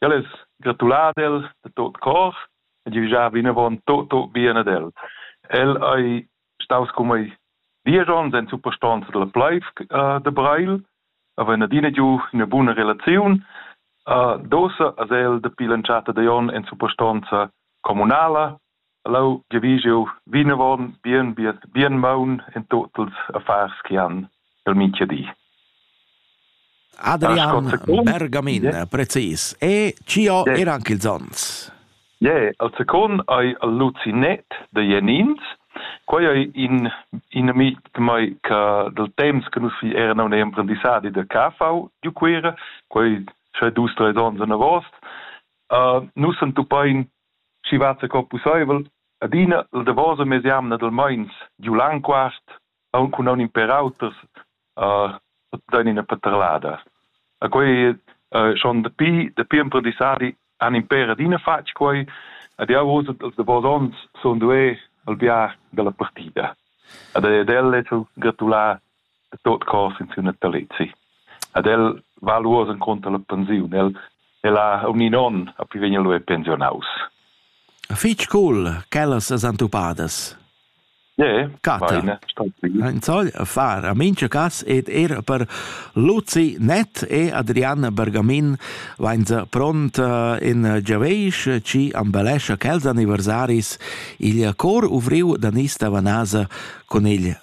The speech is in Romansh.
Ja less gratular ad el da tot cor e giavischar vinavon tot tot bien ad el. El ei staus cun mei diesch onns en suprastonza dalla Pleif da Breil, havein adina giu ina buna relaziun. Dosa has el dapi l'entschatta da onn en suprastonza communala Leu giavisch jeu vinavon bien biet, bien maun en tut ils affars che han el mintga di. Adrian Bergamin, precis. E chi ho yeah. er anche ils ons? Ie, yeah, al second hai al Lucinet da Jenins. Quai è in, in amic mai che del temps che nus era un imprendissadi da KV di Cuera, quai sche dus, tre ons an avost. Uh, nus entupain schi vezza co pusseivel adina la davosa mesjamna dal meins giu Langquart aunc cun aun in per auters dain ina paterlada. E quei schon dapi dapi emprendissadi han in per adina fatg quei ed jau oz als davos onns sun duei al bia dalla partida. Ed ed el less gratulà e tot cos in siu natalizi. Ad el va lu oz encunter la pensiun. El, el ha un in onn a pi vegn lu pensionaus. Fitg cool, quellas as antupadas. Yeah, Cata. In soll far a mincha cas ed er per Luzi Net e Adrian Bergamin vain se pront eh, in Giaveish ci ambelescha quels anniversaris il cor uvriu da Nista Vanasa con il